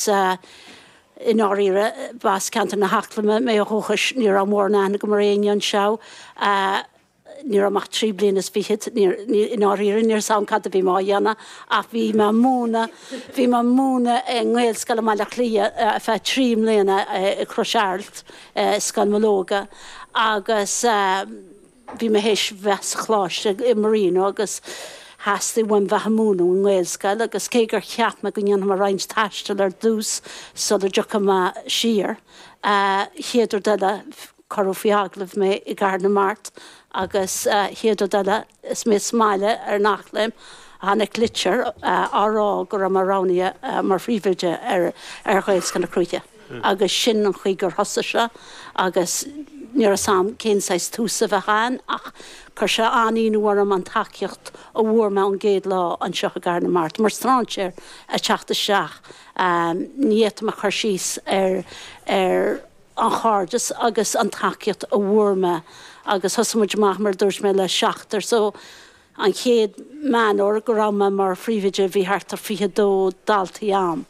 Sea, i ndáiríre, b'as ceantar na hEaclaime mé ó dhúchais. Ní raibh mórán aithne agam ar éinne anseo. Ní raibh mé ach trí bliana is fichead. I ndáiríre, ní raibh 's a'm cad a bhí mé á dhéanamh, ach bhí mé ag múineadh, bhí mé ag múineadh i nGaelscoil i mBaile Átha Cliath ar feadh trí mbliana, i gCrois Araild, i Scoil Mológa, agus. Bhí mé th'éis bheith sa choláiste i Marino agus theastaigh uaim bheith ag múineadh i nGaelscoil agus cé gur cheap mé go ndéanfadh mé roinnt taistil ar dtús sula dtiocfadh mé siar, a chéad rud eile cuireadh faoi agallamh mé i gCathair na Mart agus a chéad rud eile is mé sa mbaile ar an Eachléim, tháinig litir á rá go raibh mé roghnaithe mar phríomhoide ar Ghaelscoil na Cruaiche. agus sin an chaoi gur thosaigh seo agus ní raibh 's a'm cén saghas tús a bheadh a'ainn ach chuir sé an-ionadh orm an tacaíocht a bhfuair mé ón gcéad lá anseo i gCathair na Mart, mar strainséir a' teacht isteach. Ní fhéadfaidh mé cur síos ar, ar an chairdeas agus an tacaíocht a bhfuair mé agus thosaigh muid amach mar a dúirt mé le seachtar so, An chéad Meán Fómhair go raibh mé mar phríomhoide bhí thart ar 22 daltaí ann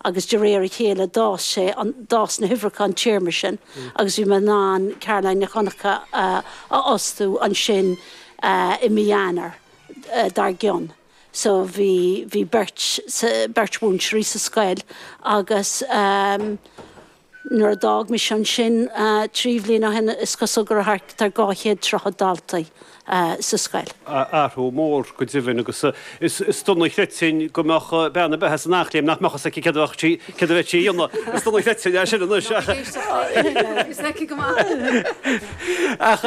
agus de réir a chéile d'fhás sé, d'fhás na huimhreacha an téarma sin agus bhí mé in ann Caroline Nic Dhonncha a fhostú ansin i mí Eanáir dar gcionn. So bhí, bhí beirt, beirt mhúinteoirí sa scoil agus. Nuair a d'fhág mise ansin trí bhliain ó shin is cosúil go raibh thart ar dhá chéad tríochad daltaí sa scoil. athrú mór go deimhin agus is dona a chreidfinn go mbeadh bean a beadh as an Eachléim nach mbeadh fhios aici céard a bheadh sí céard a bheadh sí a dhéanamh. Is dona a chreidfinn é sin anois ach. Tá sí ag éisteacht féin inniu ach fhios aici go maith. Ach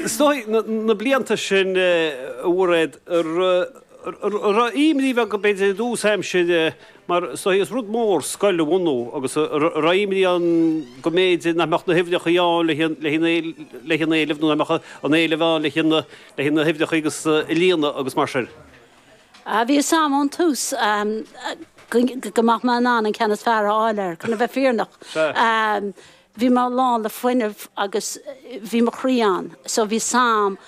is dóigh na blianta sin a Mháiréad, an raibh imní bheag b'fhéidir i dtús aimsire mar is dóichí is rud mór, scoil a bhunú agus an raibh imní ann go mb'fhéidir nach mbeadh na huimhreachaí ann le haghaidh an éilimh, nó nach mbeadh an t-éileamh ann le haghaidh na huimhreachaí agus a líonadh agus mar sin. Bhí fhios a'm ón tús go mbeadh mé in ann an ceann is fearr a fháil air, chun a bheith fírinneach. Bhí mé lán le fuinneamh agus bhí mo chroí ann so bhí 's am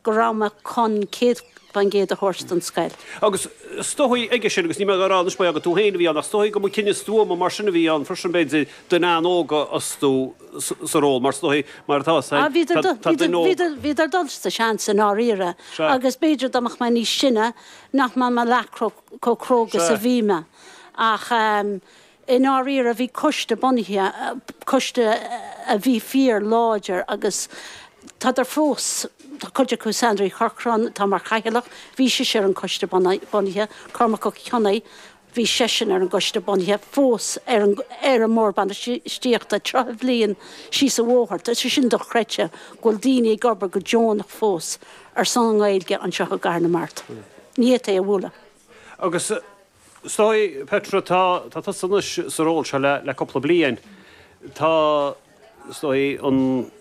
go raibh mé chun céad faoin gcéad a thabhairt don scoil. Agus is dóichí aige sin agus ní mé a rá anois mar gheall gur tú féin a bhí ann ach is dóichí go mba cinneadh stuama mar sin a bhí ann freisin b'fhéidir duine óg a fhostú sa ról mar is dóichí mar atá tá Ah bhíodar do tá duine óg bhíodar bhíodar ag dul sa seans i ndáiríre Sea. agus b'fhéidir dá mbeadh mé níos sine nach mbeadh mé leath chomh cróga 's a bhí mé ach eh I ndáiríre, bhí coiste bunaithe, coiste a bhí fíor láidir agus tádar fós, tá cuid acu, Sandra Uí Chorcráin atá mar Chathaoirleach, bhí sise ar an coiste bunaithe, Cormac Ó Cionnaith, bhí seisean ar an gcoiste bunaithe, fós ar an, ar an mBord Bainistíochta, 30 bhliain síos an bóthar, tá sé sin dochreidte go bhfuil daoine ag obair go deonach fós ar son an Ghaeilge anseo i gCathair na Mart. Ní fhéadfaí é a bhualadh. Agus Is dóichí, Petra, tá tusa anois sa ról seo le cúpla bliain. Tá, is dóichí, an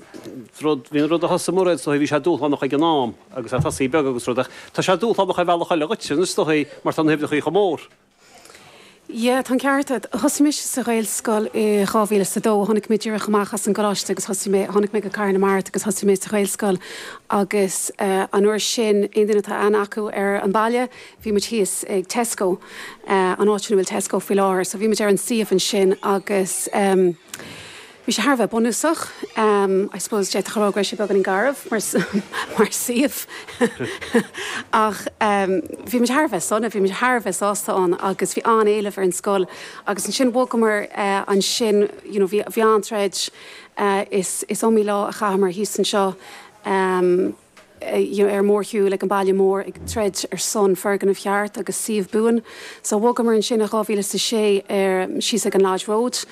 rud, bhí an rud a thosaigh Mairéad, is dóichí, bhí sé dúshlánach ag an am agus ag tosaí beag agus rud, ach tá sé dúshlánach ar bhealach eile dhuit, anois, is dóichí, mar tá na huimhreacha chomh mór. Yeah, tá an ceart agat. Thosaigh mise sa Ghaelscoil i 2002. Tháinig mé díreach amach as an gcoláiste agus thosaigh mé, tháinig mé go Cathair na Mart agus thosaigh mé sa Ghaelscoil agus an uair sin, aon duine atá aithne acu ar an baile, bhí muid thíos ag Tesco, an áit sin a bhfuil Tesco faoi láthair, so bhí muid ar an suíomh ansin agus bhí sé thar a bheith bunúsach, I suppose d'fhéadfá a rá go raibh sé beagáinín garbh mar suíomh ach bhí muid thar a bheith sona, bhí muid thar a bheith sásta ann agus bhí an-éileamh ar an scoil agus ansin bhogamar ansin, you know, bhí an-troid, is iomaí lá a chaitheamar thíos anseo. ar mórshiúil ag an baile mór ag troid ar son foirgneamh cheart agus suíomh buan. So bhogamar ansin i 2006 ar síos ag an Lodge Road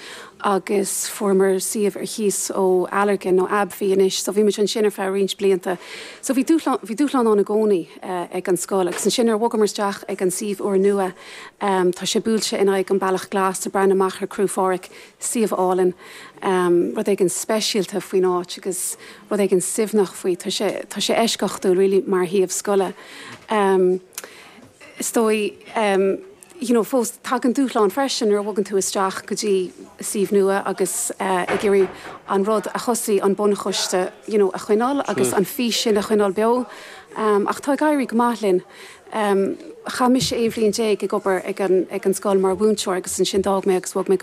agus fuaireamar suíomh ar chíos ó Allergan, nó AbbVie anois. So bhí muid ansin ar feadh roinnt blianta. So bhí dúshlán, bhí dúshlán ann i gcónaí ag an scoil. Agus ansin nuair a bhogamar isteach ag an suíomh úr nua, tá sé buailte in aghaidh an Bealach Glas, ag breathnú amach ar Cruach Phádraig, suíomh álainn, rud éigin speisialta faoin áit agus rud éigin suaimhneach faoi. Tá sé, tá sé eisceachtúil really mar shuíomh scoile. Is dóigh you know fós tagann dúshlán freisin nuair a bhogann tú isteach go dtí suíomh nua agus ag iarraidh an rud a thosaigh an bunchoiste you know a choinneáil agus an fís sin a choinneáil beo ach tá ag éirí go maith linn. Chaith mise aon bhliain déag ag obair ag an ag an scoil mar mhúinteoir agus ansin d'fhág mé agus bhog mé go